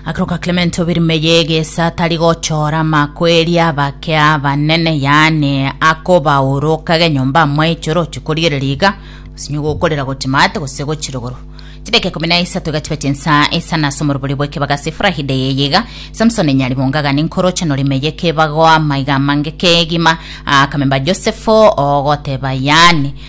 Akoroka Clement obirumeye egesa atari gochora amakweri abake abanene yaani akobaura okage nyomba amwaiche oroche korigereria iga osinye gokorera gotimate gose gochirogoro chideke kumi na isato iga chibe chinsa isa nase omorobori bw'ekebaga sifurahide yeye iga samson nyari bongaga ninkoroche norimeye kebago amaiga amange kegima akamemba josefo ogoteba yaani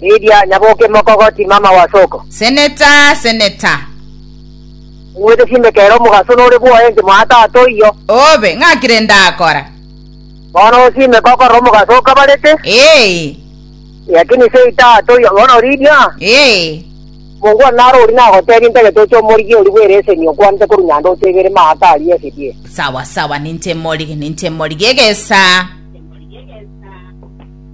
Lydia nyaboke mokogoti mama wa soko. Seneta, seneta. Ng'wete chinde kere omogaso nore bwoye inche mwa tata oyio. Obe, ng'aki rende akora? Bono osime kokorora omogaso okabarete. Ee. Lakini sei tata oyio, bono Lydia. Ee. Mungu one naro ori nagotebie ntagete oche omorigi ori bwere eseni okwanete korwa nyanda otebere maaka aria esedie. Sawa sawa, ninche morigi, ninche morigi egesa.